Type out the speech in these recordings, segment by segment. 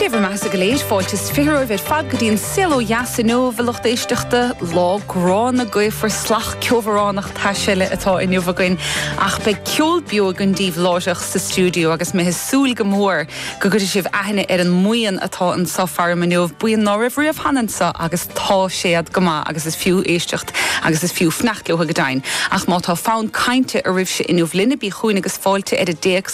Dé bhur mbeathasa go léir, fáilte is fiche romhaibh ar fad go dtí an saol ó dheas inniu a lucht éisteachta, lá gránna gaofar fliuch ceobhránach tais eile atá inniu againn ach beidh ceol beo againn daoibh láithreach sa stiúideo agus mé ag súil go mór go gcuirfidh sibh aithne ar an mbuíon atá anso faram inniu, buíon ná raibh riamh cheana anso agus tá siad go maith agus is fiú éisteacht agus is fiú fanacht leo go deimhin ach má tá fonn cainte oraibhse inniu linn bígí chugainn agus fáilte ar an dtéacs.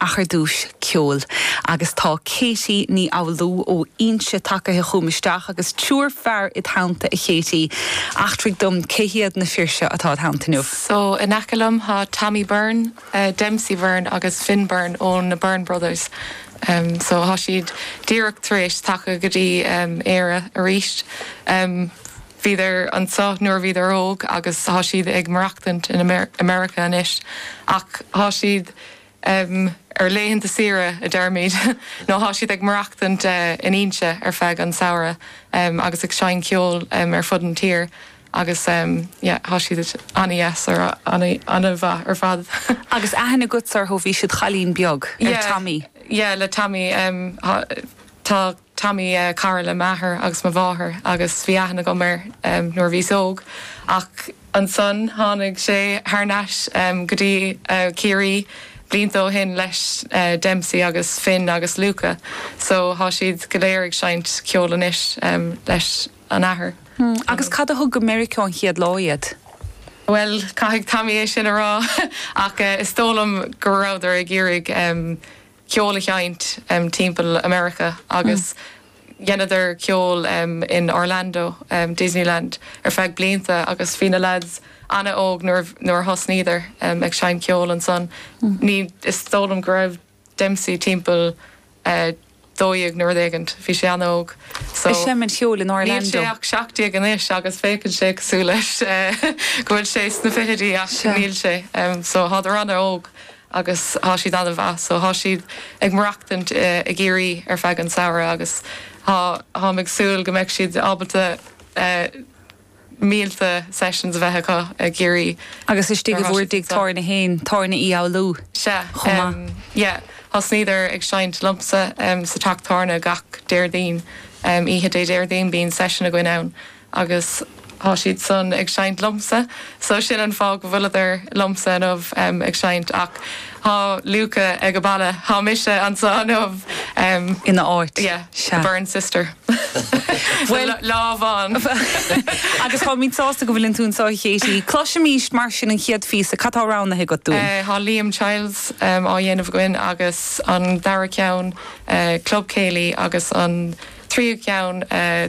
ach ar dtúis ceoil, agus tá Katie Ní Fhoghlú ó Inse tagaithe chugam isteach agus triúr fear ina teannta, a Katie. Eachtraigh dom cé hiad na fir seo atá id theannta inniu. So, in aice liom tá Tommy Byrne, Dempsey Byrne agus Finn Byrne ó na Byrne Brothers. So, tá siad díreach tar éis teacht go dtí Éire arís. Bhíodar anseo nuair a bhíodar óg agus tá siad ag maireachtaint in America anois. Ach tá siad em. ar laethanta saoire a deirimid, nó tá siad ag maireachtaint in Inse ar feadh an tsamhraidh, em. agus ag seinm ceoil, em. ar fud an tír agus, em. yeah. tá siad ana-dheas ar ana-mhaith ar fad. Agus aithne agatsa orthu, ó bhís id chailín beag, ar Tommy. Yeah, yeah, le Tommy, em. tá. Tommy, cara le m'athair agus mo mháthair agus bhí aithne agam air nuair a bhíos óg ach ansan tháinig sé thar n-ais go dtí Ciarraí blianta ó shin leis Dempsey agus Finn agus Luka so thá siad go léir ag seinnt ceoil anois leis an athair. Hmm, agus cad a thug go Meiriceá an chéad lá iad? Bhuel, caithfidh Tommy é sin a rá ach is dóigh liom go rabhadar ag iarraidh ceol a sheinnt timpeall America agus dheineadar ceol in Orlando, Disneyland ar feadh blianta agus bhí na lads ana-óg nuair a thosnaíodar ag seinnt ceol ansan. Is dóigh liom go raibh Dempsey timpeall dó dhéag nó rud éigin, bhí sé ana-óg so Ag seinm ceoil in Orlando. níl sé ach seacht déag anois agus féachann sé cosúil leis go bhfuil sé sna fichidí ach níl sé so thádar ana-óg. agus thá siad ana-mhaith so thá siad ag maireachtaint i gCiarraí ar feadh an tsamhraidh agus tháim ag súil go mbeidh siad ábalta mílte sessions a bheith acu i gCiarraí Agus istigh i nbhur dtigh tábhairne féin, Tábhairne Uí Fhoghlú, chomh maith. Sea, em, yeah, thosnaíodar ag seinnt liomsa, em, sa teach tábhairne gach Déardaoin, em, oíche Déardaoin bíonn session againn ann agus thá siad san ag seinnt liom-sa so sin an fáth go bhfuileadar liom-sa inniu ag seinnt ach thá Luca age baile, thá mise annso inniu. ina áit. The Byrne sister. Bhuel. Tá lámh ann. Agus táimid sásta go bhfuileann tú annso a Chéití. Cloisimíst mar sin an chéad phíosa, cad thá roghnaithe agat dúinn? Eh, thá Liam Chiles á dhéanamh againn agus an dara ceann eh, Club Céilí agus an tríú ceann eh,